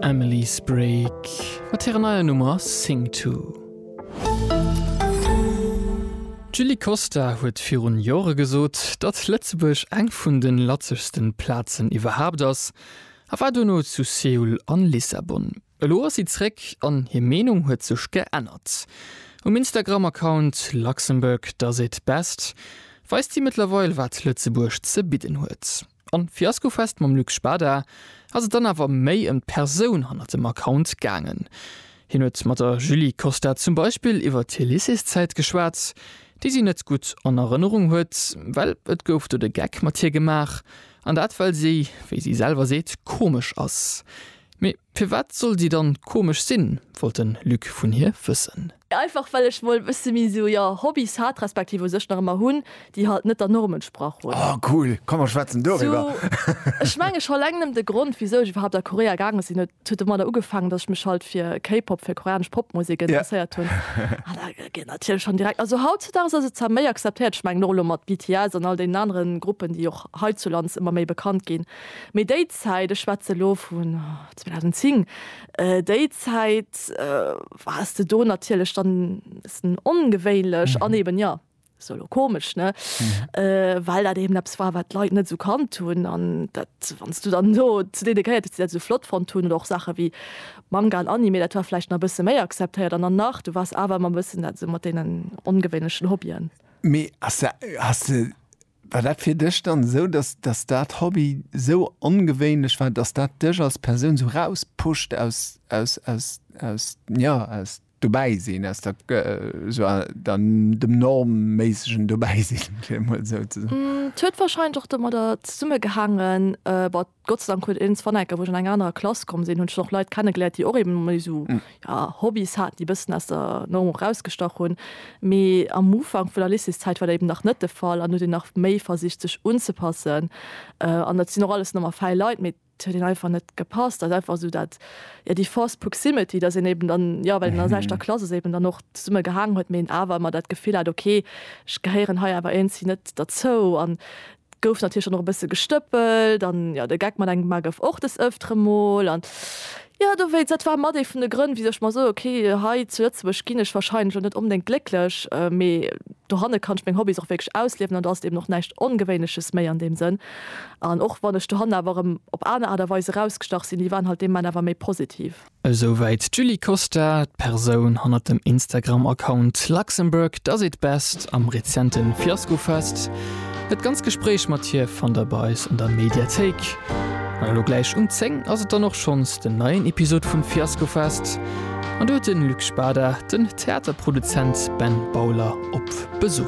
Emily Sprague mat hirer neier Nummer Sing To. D'Julie Costa huet virun Jore gesot, datt Lëtzebuerg eng vun de latzegsten Plazen iwwerhaapt ass a war duerno zu Seoul an Lissabon. Elo ass si zréck an hir Meenung huet sech geännert. Um Instagram-Account Luxembourg does it best weist si mëttlerweil wat Lëtzebuerg ze bidden huet. An Fiaskofest mam Luc Spada ass et dann awer méi ëm d'Persoun hannert dem Account gaangen. Hien huet mat der Julie Costa zum Beispill iwwert hir Lycéeszäit geschwat, déi si net gutt an Erënnerung huet, well et gouf do de Geck mat hir gemaach, an dat well si, wéi si selwer seet, komesch ass. Mee Firwat soll si dann komesch sinn? wollt den Luc vun hir wëssen. Einfach well ech mol bësse méi sou, jo, Hobbys hat, respektiv u sech nach ëmmer hunn, déi halt net der Norm entsprach hunn. Oh cool, komm mer schwätzen doriwwer. Ech mengen scho eleng nëmmen de Grond wisou ech iwwerhaapt a Korea gaange sinn, huet huet domadder ugefaangen, dass ech mech halt fir K-Pop, fir koreanesch Popmusek interesséiert hunn. An da geet natierlech schonn direkt, also hautzedaags ass et zwar méi akzeptéiert, ech mengen och elo mat BTS an all deenen anere Gruppen, déi och heizulands ëmmer méi bekannt ginn, Mee déi Zäit, ech schwätze elo vun 2010, déi Zäit waars de do natierlech dann e bëssen ongewéinlech an eeben, jo, se elo komesch, ne, well dat eeben eppes war, wat d'Leit net esou kannt hunn. An dat, wann s du dann do zu deene gehéiert hues, déi dat esou flott fonnt hunn, oder och Saache wéi Manga an Anime, dat war vläicht nach e bësse méi akzeptéiert. An dann nach, du waars awer ëmmer e bëssen dat esou mat deenen ongewéinlechen Hobbyen. Mee ass dat, has de War dat fir dech dann esou, dass dass dat Hobby esou ongewéinlech war, dass dat dech als Persoun esou rauspusht aus aus aus aus jo aus dobäi sinn, aus der esou der dem normméissegen dobäi sinn, fir emol esou ze soen? Et huet warscheinlech och domadder zesummegehaangen, Gott sei Dank huet een Svanecker, wou ech an eng anerer Klass komm sinn, hunn ech och Leit kennegeléiert, déi och eben méi esou, ja, Hobbys haten, déi e bëssen aus der Norm och erausgestach hunn. Mee am Ufank vun der Lycéeszäit war dat eben nach net de Fall an huet een nach méi versicht, sech unzepassen. An et sinn och alles normal fäi Leit, mee et huet een einfach net gepasst. Dat ass einfach esou dat, ja, déi forced proximity, dass een eben dann, jo, well een an der selwechter Klass ass, eben dann och zesumme gehaangen huet, mee een awer ëmmer dat Gefill hat, okay, ech gehéieren hei awer iergendswéi net derzou. An Gouf natierlech dann och e bësse gestëppelt an jo, de Geck mat engem Mar gouf och des Ëftere mol an jo, dowéinst, dat war mat ee vun de Grënn, wisou ech mer soe, ok, hei zu Lëtzebuerg ginn ech wahrscheinlech och net onbedéngt glécklech, mee dohanne kann ech meng Hobbys och wierklech ausliewen an do ass et eben och näischt Ongewéinleches méi an deem Sënn. An och wann ech dohanne awer erëm op aner Aart a Weis erausgestach sinn, déi waren halt dee Moment awer méi positiv. Esou wäit d'Julie Costa, d'Persoun hannert dem Instagram-Account Luxembourg does it best am rezente Fiaskofest. Dat ganz Gespréich mat hir fannt der bei eis an der Mediathéik. An elo gläich um 10 ass et dann och schonns den neien Episod vum Fiaskofest an do huet den Luc Spada den Theaterproduzent Ben Bowler op Besuch.